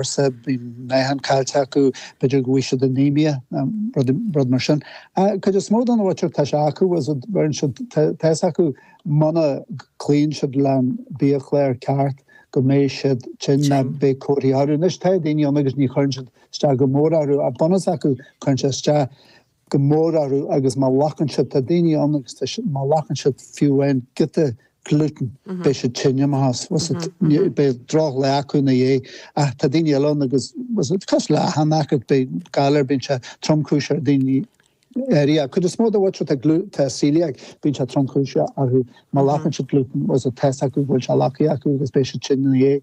arsa, beidh meáchan caillte acu, b'fhéidir go bhfaighidh siad anaemia nó rud mar sin. An chuid is mó den áitreabh tá sé acu agus deireann siad tá fhios acu muna gcloíonn siad leis an biachlár ceart go mbeidh siad tinn ná beidh comharthaí orthu. Anois tá daoine ann agus ní chuireann siad isteach go mór orthu ach bunús acu cuireann sé isteach. go mór orthu agus má ghlacann siad, tá daoine ann agus tá siad, má ghlacann siad fiú amháin giota glútan, beidh siad tinn imithe as, bhfuil fhios agat, beidh droch lá acu ina dhiaidh, ach tá daoine eile ann agus cosúil le achan aicíd, galar, bíonn sé tromchúiseach ar dhaoine áirithe, ach cuid is mó de bhailte atá glú, atá coeliac, bíonn sé tromchúiseach orthu, má ghlacann siad glútan, bhfuil fhios agat, tá fhios acu go bhfuil sé glactha acu agus beidh siad tinn ina dhiaidh,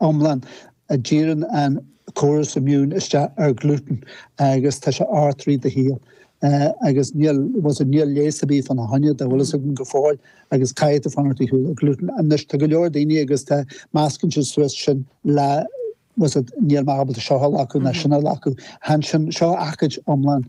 iomlán, a díríonn an córas immune isteach ar glútan agus tá sé agat i rith do shaoil agus níl, bhfuil fhios agat, níl leigheas ar bith fána choinne go bhfuil fhios againn go fóill agus caithfidh tú fanacht ar shiúl ó glútan. Anois tá go leor daoine agus tá, meascann siad suas sin le, bhfuil fhios agat, níl mé ábalta seo a ghlacadh ná sin a ghlacadh. Chan sin, seo aicíd iomlán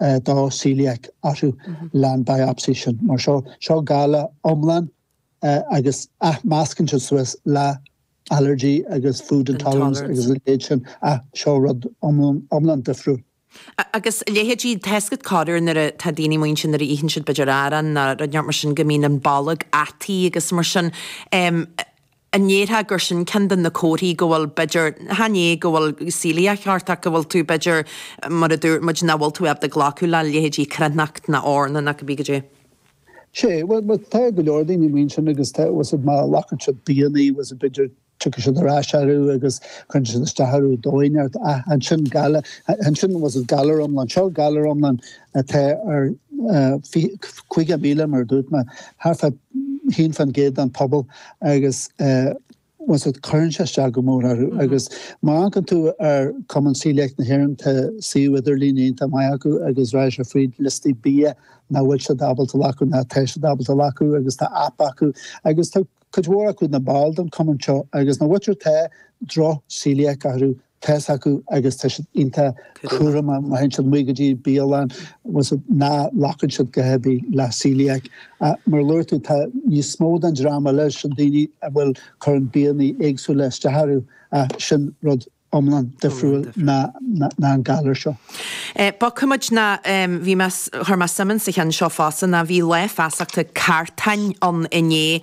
tá coeliac orthu leis an biopsy sin. Mar sin, seo galar iomlán agus ach meascann siad suas le allergy agus food intolerance agus a leithéid sin ach seo rud iomlán difriúil. Agus leithéidí, tá fhios agat, corruair tá daoine amuigh ansin nuair a itheann siad b'fhéidir arán ná rud inteacht mar sin go mbíonn an bolg ataithe agus mar sin. an ndéarfá gur sin ceann de na comharthaí go bhfuil, b'fhéidir, chan é go bhfuil coeliac ort ach go bhfuil tú, b'fhéidir, mar a dúirt muid, nach bhfuil tú ábalta glacadh le leithéidí cruithneacht ná eorna ná cibé caidé. Sé, bhuel, bhuel, tá go leor daoine amuigh ansin agus, bhfuil fhios agat, má ghlacann siad bianna, bhfuil fhios agat, b'fhéidir, tiocfaidh siad ar ais orthu agus cuireann siad isteach orthu ar dhóigh inteacht ach ansin galar, ansin, bhfuil fhios agat, galar iomlán, seo galar iomlán atá ar caoga míle, mar a dúirt mé, thart fá haon faoin gcéad den phobal. agus bhfuil fhios agat cuireann sé isteach go mór orthu agus má amharcann tú ar Cumann Coeliac na hÉireann tá suíomh idirlín iontach maith acu agus rachaidh sé fríd liostaí bia nach bhfuil siad ábalta a ghlacadh ná tá siad ábalta a ghlacadh agus tá app acu agus tá cuid mhór acu ina ball den Cumann seo agus na hothair atá droch-coeliac orthu tá fhios acu agus tá siad iontach cúramach má théann siad amach go dtí bialann nach nglacann siad a dhath ar bith le coeliac. Mar a dúirt tú, tá níos mó den dream eile sin daoine a bhfuil cuireann bianna éagsúla isteach orthu ach sin rud iomlán difriúil ná an galar seo. Ba chuma ná bhí mé, chuir mé suim sa cheann seo fosta, ná bhí lá feasachta cartáin ann inné.